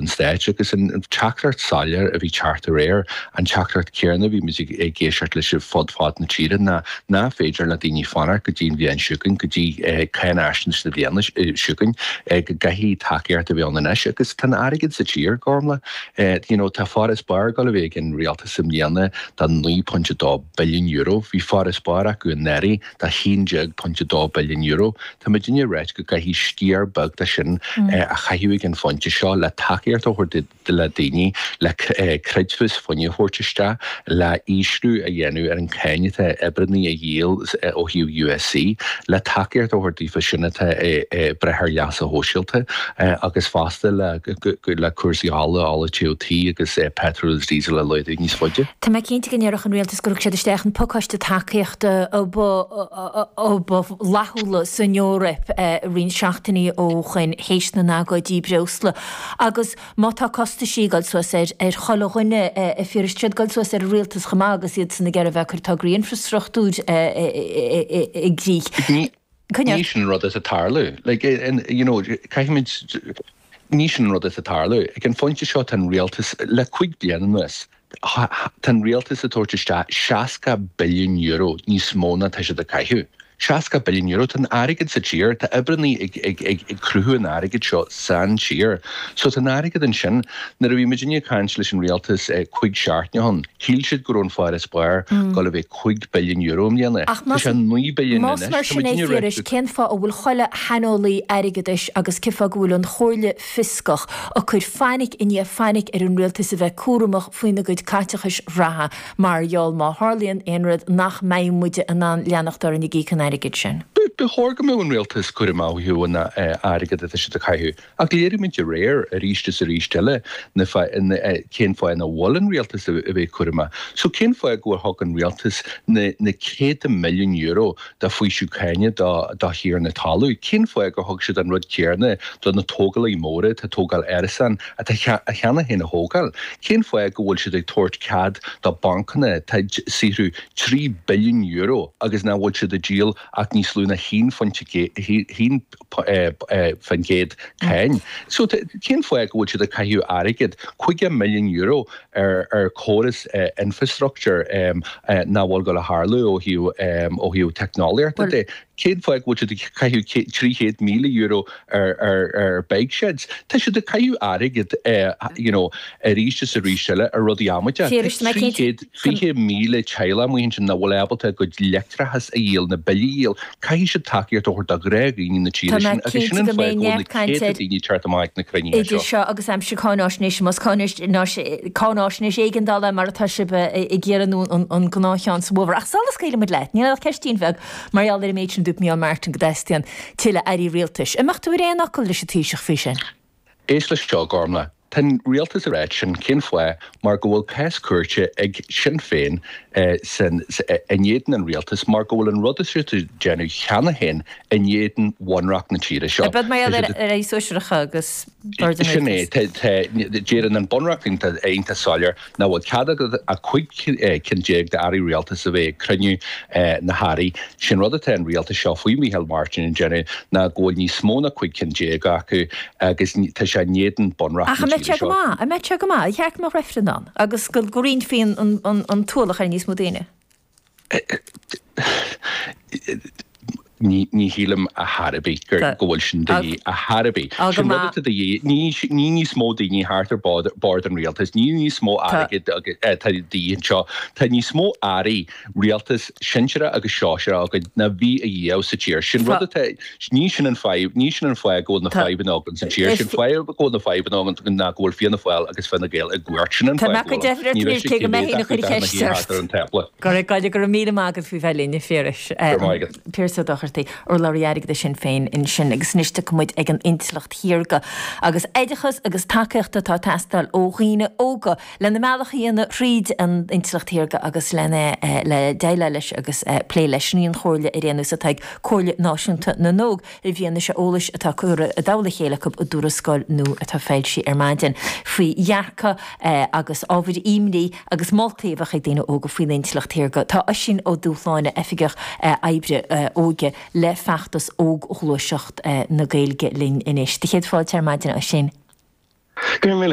an stáit. Agus an teachtaireacht soiléir a bhí ag teacht aréir, an teachtaireacht chéanna a bhí muid ag éisteacht leis fud fad na tíre ná nach féidir le daoine fanacht go dtí an bhliain seo chugainn, go dtí cáinfhaisnéis na bliana seo chugainn, go gcaithfidh tacaíocht a bheith ann anois. Agus tá an airgead sa tír, Gormlaith, you know, tá farasbarr ag gabháil a bheith ag an rialtas i mbliana de €9.2 billiún. Bhí farasbarr acu anuraidh. 11.2 billiún euro. Tá muidinne ag ráit go gcaithfidh sciar beag de sin a chaitheamh ag an phointe seo le tacaíocht a thabhairt do dhaoine, le creidmheas fuinnimh a thabhairt isteach, le ísliú a dhéanamh ar an cáin atá ar oibrithe a dhíol ó thaobh USC, le tacaíocht a thabhairt daofa sin atá ag brath ar leas sóisialta agus fosta le cúrsaí ola, ola teasa agus peitreal agus díosal a laghdú níos faide. Tá mé cinnte go ndéarfadh an Rialtas Gur thug siad isteach an pacáiste tacaíochta ba fhlaithiúla san Eoraip roinnt seachtainí ó shoin théis na n-agóidí breosla. Agus má tá costais ag dul suas ar chuile dhuine, Phiarais, tá siad ag dul suas ar an rialtas chomh maith agus iadsan ag iarraidh a bheith ag cur tograí infreastruchtúir i gcrích. Ní sin an rud atá ag tarlú. Caithfimid Ní sin an rud atá ag tarlú. Ag an phointe seo tá an rialtas, le cúig bliana anuas, tá an rialtas ag tabhairt isteach €60 billiún níos mó ná atá siad ag caitheamh. €60 billiún! Tá an airgead sa tír, tá oibrithe ag ag cruthú an airgid seo san tír. So tá an airgead ansin. Nuair a bhí muidinne ag caint leis an rialtas cúig seachtaine ó shoin, shíl siad go raibh an farasbarr ag gabháil a bheith. €5 billiún i mbliana. Tá sé €9 billiún anois. Ach más mar sin é, a Phiarais, cén fáth a bhfuil chuile shaineolaí airgeadais agus cén fáth go bhfuil an Chomhairle Fhioscach ag cur fainic i ndiaidh fainic ar an Rialtas a bheith cúramach faoina gcuid caiteachais reatha mar gheall má tharlaíonn aon rud nach mbeidh muide in ann leanacht orainn ag íoc an airgid sin? Ba chóir go mbeadh an Rialtas cúramach faoi aon airgead atá siad ag caitheamh. Ach léirigh muid aréir, arís is arís eile, cén fáth nach bhfuil an rialtas ag bheith cúramach. So cén fáth gur thug an rialtas na céadta milliún euro de fhaoiseamh cáine do thiarnaí talún? Cén fáth gur thug siad an rud céarna do na tógálaithe móra atá ag tógáil árasán atá cheana féin á thógáil? Cén fáth go bhfuil siad ag tabhairt cead do bancanna atá ag saothrú trí billiún euro agus nach bhfuil siad ag díol ach níos lú ná haon phuint faoin gcéad cáin. So cén fáth go bhfuil siad ag caitheamh airgead, €50 million, ar chóras infrastructúir nach bhfuil ag gabháil a tharlú ó thaobh teicneolaíochta de? Cén fáth go bhfuil siad ag caitheamh €300,000 ar bike sheds? Tá siad ag caitheamh airgead, you know, arís is arís eile ar rudaí amaideach. 20,000 teaghlach amuigh ansin nach bhfuil ábalta a gcuid leictreachas a dhíol nó bille a dhíol, caithfidh siad tacaíocht a thabhairt do ghnáthdhaoine na tíre Tá mé sin agus sin cinnte an go mbeidh fáth go bhfuil na neart cainte céadta daoine ag teacht amach ag na cruinnithe idir seo. seo agus aimsir cáinaisnéise, más cáinaisnéis cáinaisnéis éigeandála é mar atá sibh ag iarraidh nó an an gnáthcheann sa bhfómhar. Ach sula scaoilfidh muid leat. Níl ann ach ceistín bheag mar gheall ar an méid sin a dúirt Micheál Martin go dteastaíonn tuilleadh airí rialtais. An mbeadh tú ar aon fhocal leis an Taoiseach faoi sin? Éist leis seo, a Ghormlaith. Tá an rialtas ag ráit sin, cén fáth, mar go bhfuil cás cúirte ag Sinn Féin in éadan an rialtais mar go bhfuil an rud atá siad ag déanamh cheana féin in éadan bhunreacht na tíre seo. Maidir le hairí sóisearacha ag bord an rialtais. Sin é. Tá. Deireann an bunreacht iontach soiléir. Nach bhfuil cead agat ach 15 cinn d'airí rialtais a bheith ag cruinniú na hairí? Sé'n rud atá an rialtas seo faoi Mhicheál Martin ag déanamh ná go bhfuil níos mó ná 15 cinn acu agus tá sé in éadan bunreacht Ach an na mbeidh tíre sé go seo. maith? An mbeidh sé go maith? Ar cheart go mbeadh reifreann ann agus go roinnfí an t-ualach ar níos mó daoine? Ní shílim ar chor ar bith go bhfuil sin de dhíth ar chor ar bith. Sé'n rud atá de dhíth. Ní níos mó daoine thart ar bord an rialtais. Ní níos mó airí atá de dhíth anseo. Tá níos mó airí rialtais sinsearach agus sóisearacha againn ná bhí a riamh sa tír. Sé'n rud atá. Ní sin an fadhb. Ní sin an fáth go bhfuil na fadhbanna againn sa tír. Sé'n fáth go bhfuil na fadhbanna againn ná go bhfuil Fianna Fáil agus Fine Gael i gcumhacht. Sin an fáth go bhfuil an. Ní raibh sé cé mhéad acu dá mbeadh thart ar an tábla. Go raibh maith agat, go raibh míle maith agat faoi bheith linn, a Phiarais. Go raibh maith agat. Piaras Ó Dochartaigh, urlabhraí airgeadais Shinn Féin ansin agus anois tiocfaidh muid ag an intleacht shaorga agus oideachas agus tacaíocht atá ag teastáil ó dhaoine óga. lena mbealach a dhéanamh thríd an intleacht shaorga agus lena le déileáil leis agus plé leis. Sin í an chomhairle ar aon nós atá ag Comhairle Náisiúnta na nÓg i bhfianaise eolais atá curtha i dtoll a chéile acu i dtuarascáil nua atá foilsithe ar maidin faoi dhearcadh agus ábhair imní agus moltaí a bheadh ag daoine óga faoin intleacht shaorga. Tá Oisín Ó Dúshláine, Oifigeach Oibre Óige le Feachtas Óg-Ghluaiseacht na Gaeilge linn anois. Do chéad fáilte ar maidin, a Oisín. Go raibh míle